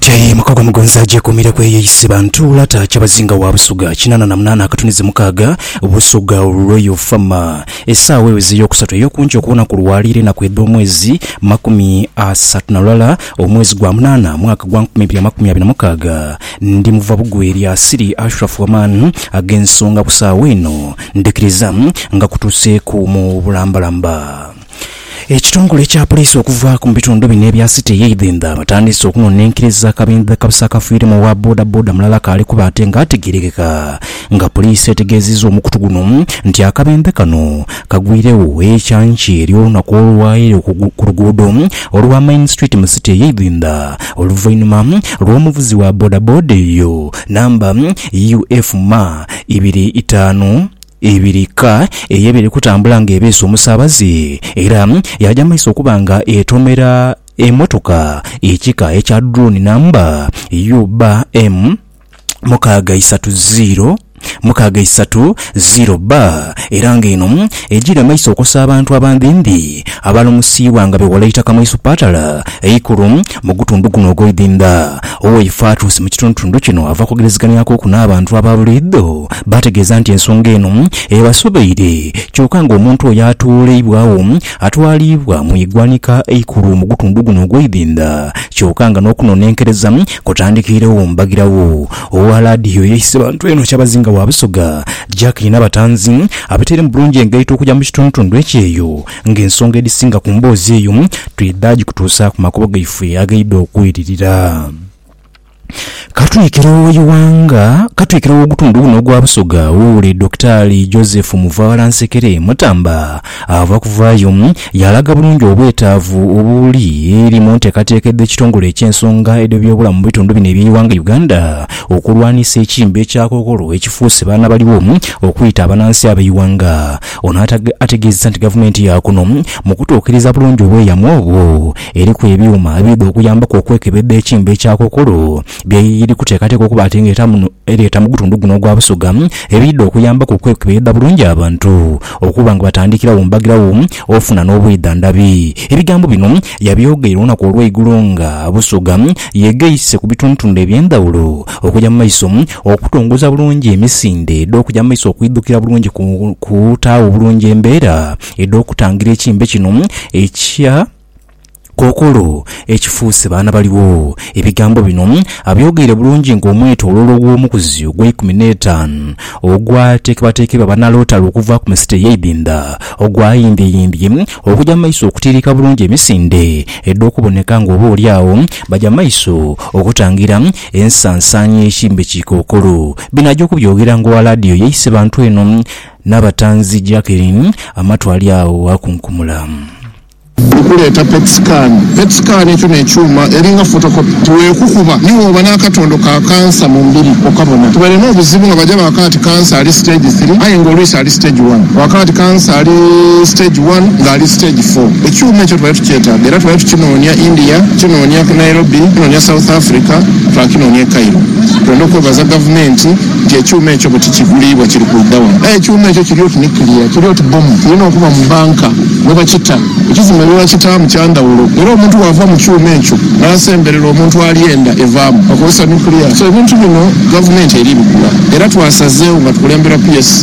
Tyaye mukago mugonza agyekuumire ku eyo ise Bantuula taa Kyabazinga wa Busoga kinaana na munaana akatunizi mukaaga, Busoga Royal Farmer. Esaawa eweze eyokusatu eyokunca okuwona ku lwaleero enaku edh'omwezi makumi asatu na lulala omwezi gwa munaana mwaka gwa nkumi ibiri amakumi abiri na mukaaga. Ndi muva bugwe eri Asili Ashraf Waman ag'ensonga ku saawa eno ndhikiriza nga kutuuseeku mu bulambalamba. Ekitongole ekya Poliisi okuvaaku mu bitundu bino ebya City eye Idhindha batandiise okunonenkeriza akabindha kabusi akafiiremu owa boda boda mulala akaali kuba ate nga ategerekeka nga Poliisi etegeziza omukutu guno nti akabindha kano kagwiiregho ekyanki ery'olunaku olwaire ku luguudo olwa Main Street mu City eye Idhindha oluvainhuma lw'omuvuzi wa boda boda eyo namba UF ma ibiri itaanu Ebirika eye biri kutambula nga ebeese omusaabaze era yaaja mu maiso okuba nga etomera emotoka ekika ekya Drone namba UBM mukaaga isatu ziiro mukaaga isatu ziiro B era nga eno egyiire mu maiso okosa abantu abandhindhi abalumusiibwa nga bewala eitaka mu isupatala eikulu Mu gutundu guno ogw'eidhindha, Owei Fatus mu kitundutundu kino ava kwogerezeganyakoku n'abantu aba buliidho baategeeza nti ensonga eno ebasobeire kyoka nga omuntu oyo atooleibwagho atwaliibwa mu igwanika eikulu mu gutundu guno ogw'eidhindha kyoka nga n'okunonenkereza kutandikiiregho mbagirawo owa laadiyo eyeise bantu eno Kyabazinga wa Busoga Jack Nabatanzi abateire mu bulungi engaito okuja mu kitundutundu ekyeyo Ng'ensonga edhisinga ku mboozi eyo twidha gikutuusa ku makubo gaife agaidha okweririra. Ka twikire owa Iwanga, ka twikire ow'ogutundhu guno ogwa Busoga ow'oule Dokitaali Joseph Muvaala Nsekere Mutamba ava kuvaayo yaalaga bulungi obwetaavu obuli eri mu nteekateeka edh'ekitongole eky'ensonga edh'ebyobulamu mu bitundu bino eby'eiwanga Uganda okulwanisa ekimbe kya kookolo ekifuuse baana baliwo okwita abanansi ab'eiwanga Ono ategeezezza nti gavumenti yaakuno mu kutuukiriza bulungi obweyamo obwo, eriku ebyuma ebiidha okuyambaku okwekebedha ekimbe kya kookolo byeri kuteekateeka okuba ati nga ereeta mu gutundu guno ogwa Busoga ebiidha okuyambaku okwekebedha bulungi abantu okuba nga batandikirawo mbagirawo ofuna n'obwidhandhabi. Ebigambo bino Yabyogeire olunaku olw'eigulo nga Busoga yegeise ku bitundutundu eby'endhawulo okuja mu maiso okutongoza bulungi emisinde edh'okuja mu maiso okwidhukira bulungi ku kutaawo obulungi embeera edh'okutangira ekimbe kino ekya kookolo ekifuuse baana baligho. Ebigambo bino abyogeire bulungi ng'omwetoloolo gw'omukuzi ogw'eikumi n'etaanu ogwateekebwateekerwa banalootalo okuva ku misita ey'eidhindha ogwayindhieyiindhie Okuja mu maiso okutiiriika bulungi emisinde edh'okuboneka nga oba oli agho baja mu maiso okutangira ensansaanya y'ekirime ki kookolo. Bino aja okubyogera ng'owa laadiyo ye Isebantu eno Nabatanzi Jackeline amatwale agho bwakunkumula. Okuleeta petisikaani. Petisikaani ekyo n'ekyuma eri nga fotokopi. Tiweekukuba ni wooba n'akatondo ka kansa mu mubiri okabona. Tubaire n'obuzibu nga baja baakagha ti kansa ali siteegi three aye nga olwisi ali. Stage One. Kwakala nti kansa ali Stage One nga ali Stage Four. Ekyuuma ekyo tubale tukyetaaga era tubale tukinoonia India, tukinoonia ku Nairobi, tukinoonia South Africa, twakinoonia e Cairo. Twende okwebaza Gavumenti nti ekyuuma ekyo bwe tikiguliibwa kiri kwidha wano. Aye ekyuuma ekyo kiri oti nuclear, kiri oti bbomu. Kirina okuba mu banka mwe bakita. Ekizimbe mwe bakitaamu kya ndhawulo era omuntu bw'ava mu kyuuma ekyo n'asemberera omuntu alya enda evaamu, bakozesa nuclear. So ebintu bino Gavumenti eri bigula era twasazeewo nga tukulembera PS.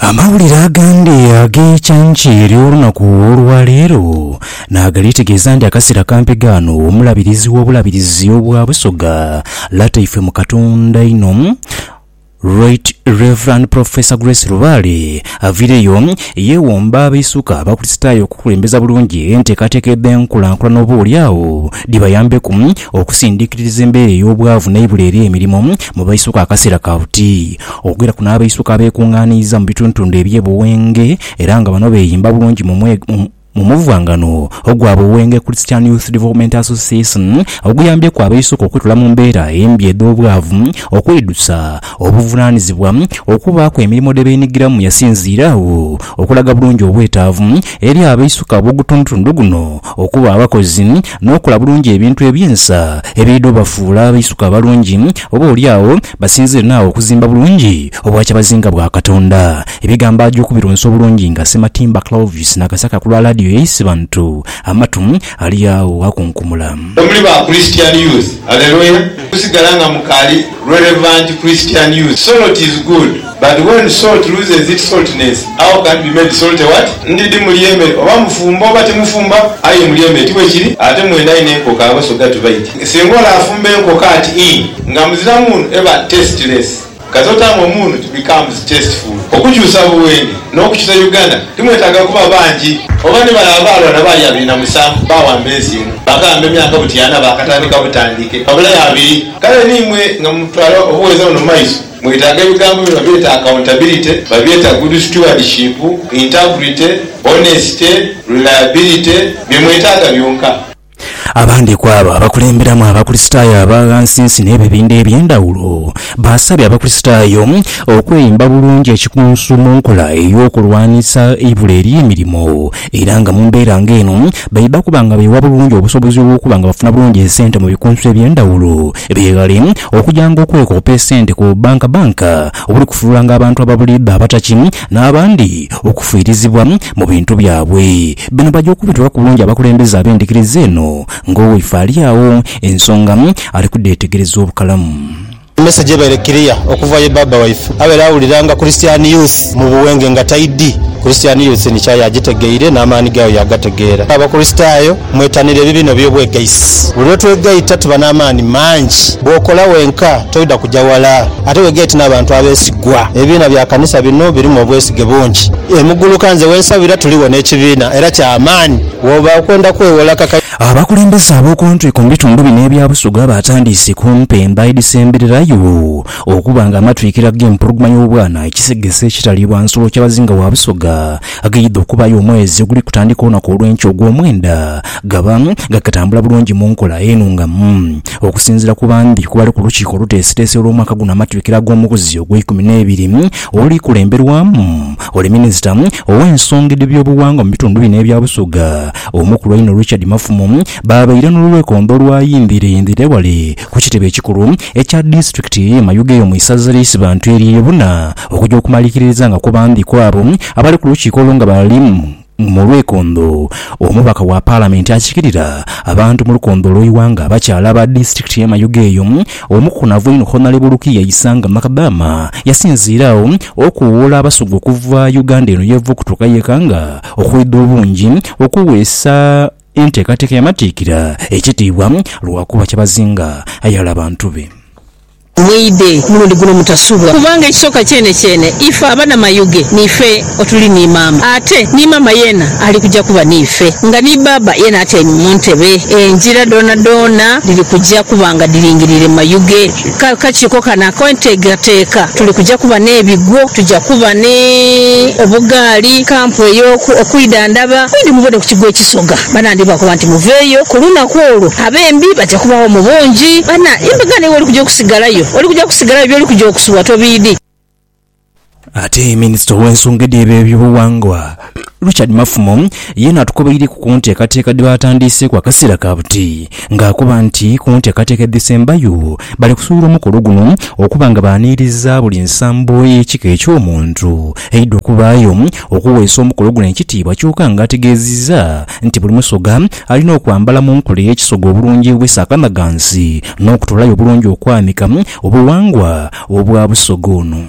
Amawulire agandi ag'eikyanki ery'olunaku olwa leero nagali tegeeza nti akaseera kampi gaano omulabirizi w'obulabirizi obwa Busoga Lataife mu Katonda inho Right Rev Professor Grace Lubaale avireyo yewomba abaisuka abakulisitaayo okukulembeza bulungi enteekateeka edh'enkulankulana oba oli agho dhibayambeku okusindikiririza embeera ey'obwavu n'eibula ery'emirimo mu baisuka akaseera ka buti. Okwira kuno abaisuka abeekungaaniiza mu bitundutundu eby'e Buwenge era nga bano beeyimba bulungi mu mu muvwangano ogwa Buwenge Christian Youth Development Association oguyambyeku abaisuka okwitula mu mbeera embi edh'obwavu, okweidusa obuvunaanizibwa, okubaaku emirimo dhe beenhigiramu Yasinziire agho okulaga bulungi obwetaavu eri abaisuka ab'ogutundutundu guno okuba abakozi n'okukola bulungi ebintu eby'ensa ebiidha obafuula abaisuka abalungi oba olyagho Basinzire naagho okuzimba bulungi obwakyabazinga bwa Katonda. Ebigambo aja okubirunsa obulungi nga Ssematimba Clovis nakasaka ku lwa laadiyo ya Isibantu, amatu ali agho ghakunkumula. Mwe muli ba Christian Youth. Hallelujah! Kusigala nga mukaali relevant Christian Youth. Soroti is good. But when salt loses its saltness, how can it be made salty what? Ndidhi mulyeme oba mufumba oba timufumba, aye mulyeme ti bwekiri? Ate mwena aye n'enkoko abasoga tibaidhi. Singa ole afumba enkoko ati ii nga muzira muunu eba tasteless. Kati otamu omuunu it becomes tasteful. Okukyusa Buwenge n'okukyusa Uganda timwetaaga kuba bangi. Oba ni bale abaalwa na baali abiri na musanvu baawamba ensi eno, baakayamba emyaka butyana baakatandika butandike, babulayo abiri. Kale ni imwe nga mutwala obuweereza buno mu maiso, Mwetaaga ebigambo bino babyeta accountability, babyeta good stewardship, integrity, honesty, reliability, bye mwetaaga byonka. Abandi ku abo abakulemberamu Abakristaayo aba ghansinsi n'ebibindha eby'endhawulo baasabye Abakristaayo okweyimba bulungi ekikunsu mu nkola ey'okulwanisa eibula ery'emirimo era nga mu mbeera ng'eno baidha kuba nga beewa bulungi obusobozi obw'okuba nga bafuna bulungi esente mu bikunsu eby'endhawulo beeghale Okujanga okwekoopa esente ku bbanka bbanka obuli kufuulanga abantu ababuliidho abataki n'abandi okufiirizibwa mu bintu byabwe. Bino baja okubitwalaku bulungi abakulembeze ab'endhikiriza eno ng'owaife ali agho ensonga ali kudheetegereza obukalamu. Emessage ebaire clear okuva ye Baaba waife abaire awuliranga Christian Youth mu buwenge nga taidhi. Christian Youth ni kyayi agitegeire n'amaani gaayo yaagategeera. Abakristaayo Mwetanire ebibina eby'obwegaisi. Buli lwe twegaita tuba n'amaani mangi. Bw'okola wenka toidha kuja wala, ate wegaite n'abantu abeesigwa. Ebibiina bya kanisa bino birimu obwesige bungi. E Muguluka nze we nsabira tuligho n'ekibiina era kya maani. Bw'oba okwenda kwewola ka. Abakulembeze ab'okuntwiko mu bitundu bino ebya Busoga batandiise ku mpemba edhisembererayo okuba nga amatwikira g'empologoma y'obwana ekisegese ekitaliibwa nsolo Kyabazinga wa Busoga Aghaidha okubaayo omwezi oguli kutandika olunaku olw'enkya ogw'omwenda, gaba nga katambula bulungi mu nkola enhungamu. Okusinziira ku bambi ku bali ku lukiiko oluteesiteesi olw'omwaka guno amatwikiro ag'omuguzi ogw'eikumi n'ebiri oluli kulemberwamu oli minisita ow'ensonga edh'ebyobuwangwa mu bitundu bino ebya Busoga, Omukulu einho Richard Mafumo, baabaire n'olwekondo olwayindhireyindhire wale ku kitebe ekikulu ekya disiturikiti ye Mayuge eyo mu isaza lya Isibantu erye Buna okuja okumalikiririza nga kubandhi kwabo abali ku lukiiko olwo nga bali mu lwekondho omubaka wa palamenti akikirira abantu mu lukondho olwe iwanga abakyala aba disiturikiti ye Mayuge eyo omukukunavu einho Honalebo Lukia Isanga Makadama yasinziire agho okuwoola abasugha okuva Uganda eno yeva okutuuka yekanga okwidha obungi okuweesa Enteekateeka ya Matikkira ekitiibwa lwa kuba kyabazinga ayaghala bantu be. Mweidhe omulundi guno mutasubwa kubanga ekisooka kyenekyeene ife aba na Mayuge niife otuli ni maama ate ni maama yeena ali kuja kuba niife nga ni baaba yeena atyaime mu ntebe. Engira dhoonadhoona dhiri kuja kuba nga dhiringiriire Mayuge. Ka kakiiko kano ak'enteekateeka tuli kuja kuba n'ebigwo, tuja kuba ni obugaali, kampu ey'oku okwidhandhaba. Mwidhi mubone ku Kigo Ekisoga. Bana ndhi bakoba nti, Muveeyo, ku lunaku olwo abembi baja kubagho mu bungi. Bana, embaga n'ewe oli kuja okusigalayo. Oli kuja kusigalayo, by'oli kuja okusubwa tobiidhi. Ate minisita ow'ensonga edh'ebyobughangwa, Richard Mafumo yeena atukobeireku ku nteekateeka dhe baatandiiseeku akaseera ka buti nga akoba nti ku nteekateeka edhisembayo bali kusuubira omukolo guno okuba nga baaniiriza buli nsambo ey'ekika eky'omuntu eidha okubaayo okuweesa omukolo guno ekitiibwa kyoka nga ategeezizza nti buli musoga alina okwambala mu nkola ey'ekisoga obulungi obw'esaakanagansi n'okutolayo obulungi okwanika obughangwa obwa Busoga ono.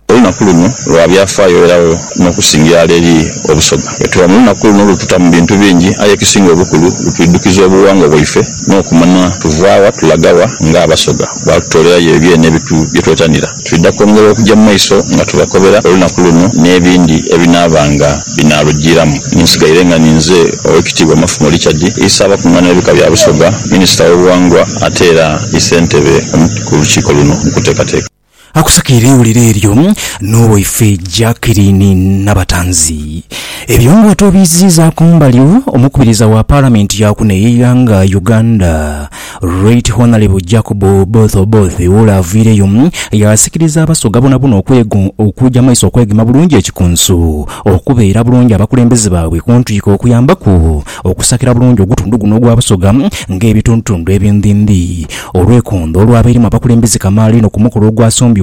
Olunaku luno lwa byafaayo eragho n'okusinga irala eri Obusoga. Bwetuba mu lunaku luno lututa mu bintu bingi aye ekisinga obukulu lutwidhukiza obuwangwa bwaife n'okumanya tuva wa tulaga wa nga Abasoga. Bwatutoolerayo ebyene byetwetanira. Twidha kwongera okuja mu maiso nga tubakobera olunaku luno n'ebindi ebinaabanga. binaalujiiramu. Ni nsigaire nga ninze Owekitiibwa Mafumo Richard Isa abakungaana b'ebika bya Busoga, Minisita w'obuwangwa ate era ni Ssentebe ku lukiiko luno mu kuteekateeka. Akusakire eiwulire eryo n'owaife Jackeline Nabatanzi. Ebyo bwatwobiiziiza kumbali, omukubiriza wa Palamenti ya kuno ey'eighanga Uganda, Right Honourable Jacob Oboth Oboth ole avaireyo yaasikiriza Abasoga bonabona okuja maiso okwegema bulungi ekikunsu, okubeera bulungi abakulembeze baabwe kuntwiko okuyambaku okusakira bulungi ogutundu guno ogwa Busoga ng'ebitundutundu ebindhindhi. Olwekondho olwabairemu abakulembeze kamaala inho kumukolo ogwasombye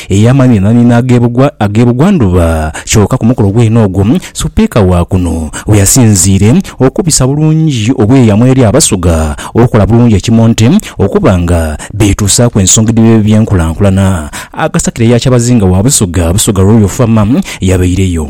ey'amaani na nini ag'ebugwa ndhuba, kyoka ku mukolo gwene ogwo Supiika wa kuno weyasinziire okubisa bulungi obweyamo eri Abasoga okukola bulungi ekimonte okuba nga beetuusaaku ensonga edhiri edh'ebyenkulankulana. Agasakira eya Kyabazinga wa Busoga, Busoga Royal Farmer, yabaireyo.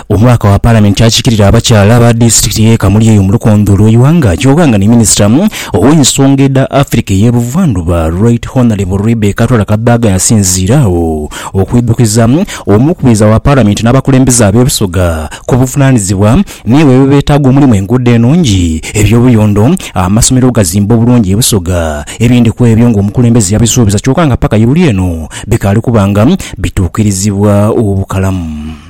Omubaka wa Palamenti akiikirira abakyala aba disitulikiti y'e Kamuli eyo mu lukonge olw'eighanga kyoka nga ni minisita ow'ensonga edha Africa ey'e Buvandhuba Right Honourable Rebecca Twala Kadaga yasinziira agho okwidhukiza Omukubiriza wa Palamenti n'abakulembeze ab'ebisoga ku buvunaanizibwa n'ebyo ebibeetaaga omulimu enguudo enungi, eby'obuyondo, amasomero ogazimba obulungi ebisoga ebindi kw'ebyo ng'omukulembeze yabisuubiza kyoka nga paka iruli eno bikaali kuba nga bituukirizibwa obukalamu.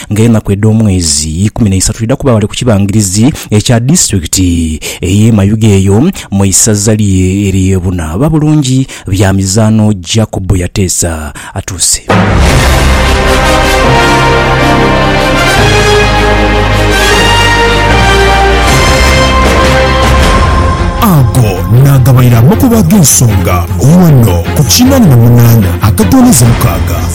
nga enaku edh'omwezi ikumi n'eisatu dhidha kuba ghale ku kibangirizi ekya disitulikiti ey'e Mayuge eyo mu isaza lye ery'e Buna. Ba Bulungi Byamizaano Jacob Yateesa atuuse. Ago naagabaire amakubo ag'ensonga ghano ku kinana na munana akatono ezo mukaaga.